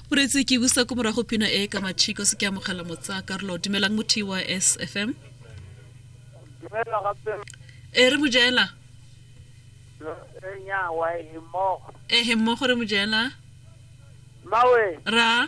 boreetse ke busa ko morago pina e ka matšhiko se ke amogela motsa karolo dumelang mo tys f m e re mojela ehe mmogo re mojela ra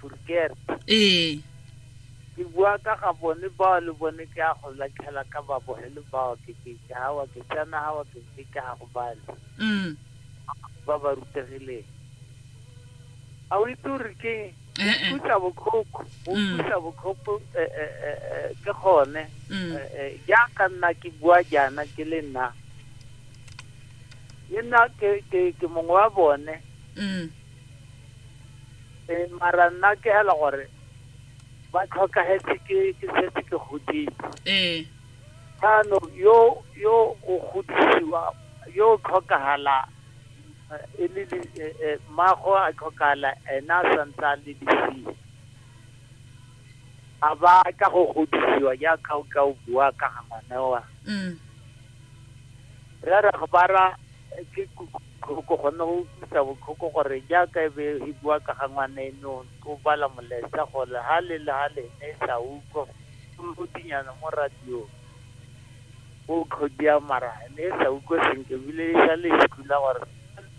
forget ee ke bua ka ga bone bao le bone ke a go latlhela ka ba bogele bao ke ke ke ha wa ke tsena ha wa ke ke ke ha go bale mm ba ba rutegileng a o itse gore ke Eh, eh. kusa bokhoko o Mm. kusa bokhoko eh, eh, eh, eh, ke gone mm Eh, eh, jaaka nna ke bua jaana ke le nna le nna ke ke- ke mongwe wa bone mm Ee, mara nna ke hela gore ba tlhokagetse ke ke setse ke godile ee jaanong yo yo o godisiwa yo o tlhokagala eh, e le le- eh, eh, mmago a tlhokagala ena a santse a le lesio a ba ka go godisiwa jaaka o ka o bua ka ga ngwana wa mm. rera go bara eh, ke ku- Tlhoko go ne go utlwisa botlhoko gore jaaka e be e bua ka ga ngwana eno o bala molesa gore ha le le ha le ne e sa utlwa modinyana mo radio o tlhodia mara ne e sa utlwe sentle ebile e sa le skhula gore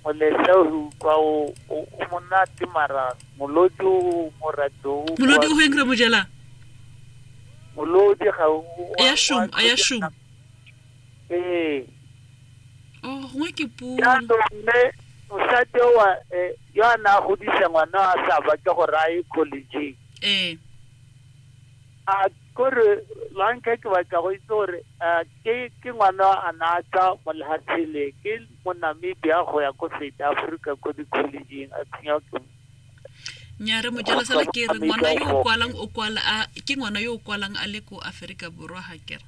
molesa o utlwa o o monate mara molodi o mo radio o molodi o hengre mojela molodi ga o ya shum ya shum ee o gongwe ke puo jaanong mme mosadi owa eh, yo a ne a godisa ngwana a sa ba ke gore a ye collegeng ee a kore lantlha ke batla go itse gore ah, ke ke ngwana a ne a tswa mo lefatsheng le ke monamibia go ya ko south africa ko di-collegeng a tsenya ke nyare mojalasala ke re ngwana yo o kwalang o kwala a ke ngwana yo o kwalang a le ko aferika borwa ga kere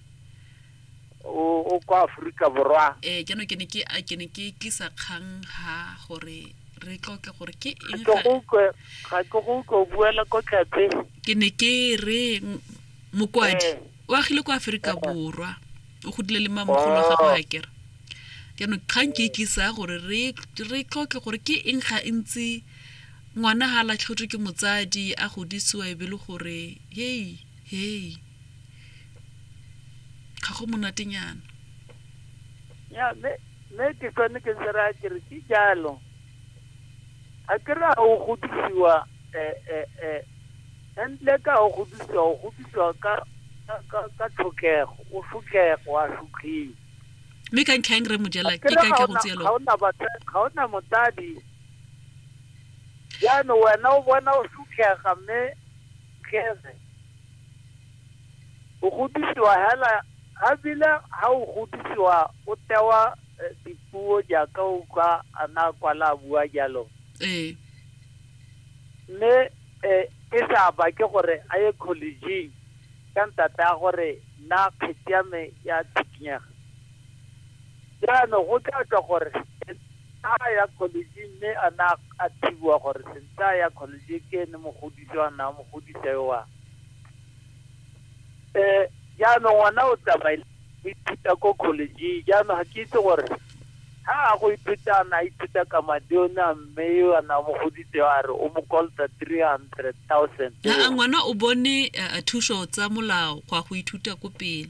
o o kwa aforika borwa um jaanong ke ne ke a- ke ne ke tlisa kgang ha gore re tlotle gore ke ga eng ke ga- go utlwe ga ke go utlwe o buela ko tlhatse ke ne ke re m- mokwadi Eh. o agile kwa aforika Eh. borwa o godile le mamogolo wa gago Oh. ga kere jaanong kgang ke e tlisa gore re re tlotle gore ke eng ga ntse ngwana ga a latlhetswe ke motsadi a godisiwa e be le gore hei Hei. Ga go monatenyana. Ya, me, me ke sone ke se raya kere ke jalo. A ke ra o godisiwa eh eh eh entle ka o godisiwa o godisiwa ka ka ka tlhokego o tlhokego a tlhotlheng. Mme ka ntlha eng re mojela ke ka ka go tseya lo. Ga ona batho ga ona motsadi. Jaanong wena o bona o tlhokega mme Kere o godisiwa hela ha bile ha o godisiwa o tewa eh, dipuo jaaka o kwa a na kwala a bua jalo ee mme eh, ke sa ba ke gore a ye collegeng ka ntata ya gore nna kgetsi ya me ya thikinyega jaanong go tla tswa gore A a ya college mme a na a thibiwa gore sentse a ya college ke ene mogodisi wa nna mogodisa yo wa eh jaanong ngwana o tsamaile go ithuta ko college jaanong ga ke itse gore ha a go ithuta a na a ithuta ka madi o ne a mme yo a na mogodise yo a re o mo kolota three hundred thousand a ngwana o bone uh, thuso tsa molao go a go ithuta ko pele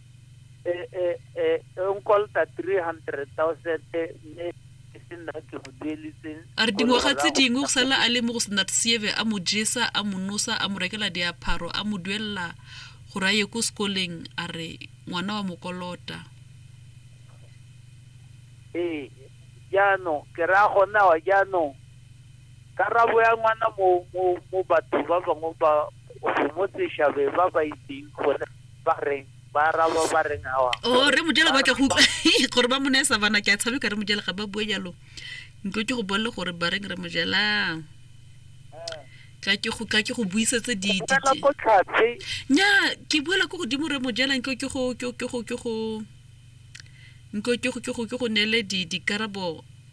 e, e, e, e nkolta 300,000 mme ke se nna ke go dueletseng. A re dingwaga tse dingwe go sala a le mo go Senatsieve a mo jesa, a mo nosa, a mo rekela diapharo, a mo duelela gore a ye ko sekoleng a re ngwana wa mokolota. Ee, jaanong ke raya gona wa jaanong Karabo ya ngwana mo mo batho ba bangwe ba mo seshabe ba ba itseng gore ba reng ba araba ba reng awa o oh, re mojela ba tla go utlwa gore ba mo naya savana ke a tshabe ka re mojela ga ba bue jalo ntlo ke go bolele gore ba reng re mojela ka ke go ka ke go buisetse di nya ke buela ko godimo re mojela ntlo ke go ke go ke go ntlo ke go ke go ke go nele di dikarabo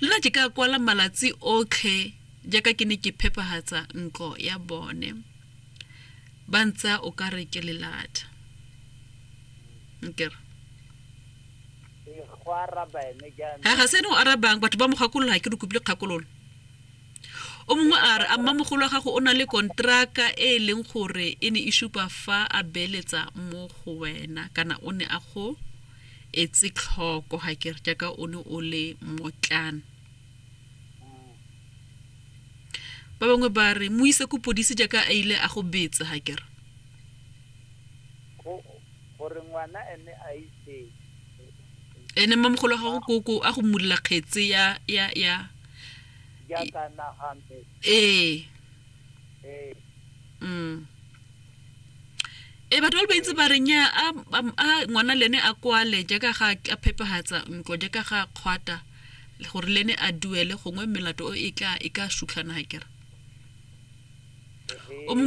Le ra ke ka kwala malatsi otlhe jaaka ke ne ke phepahatsa ntlo ya bone. Ba ntsa o ka re ke lelata. Nkere. Ee, ga go araba ene jaanong. Ha ga se ene o arabang, batho ba mo gakolola ke re kopile kgakololo. O mongwe a re a mmamogolo wa gago o na le kontraka e e leng gore e ne e supa fa a beeletsa mo go wena kana o ne a go Etse tlhoko ga ke re jaaka o ne o le motlan. Ba bangwe ba re mo ise ko podisi jaaka a ile a go betsa ga ke re. Gore ngwana ene a ise. Ene mmamogolo ga go koko a go mulela kgetse ya ya ya. Ya kana ga me. Ee. Ee. e batho ba le bantsi ba re nya a, a, a ngwana le ene a kwale jaaka ga a phepagatsa ntlo jaaka ga a kgwata gore le ene a duele gongwe melato o e tla e ka shutlhana ga kere o mongwe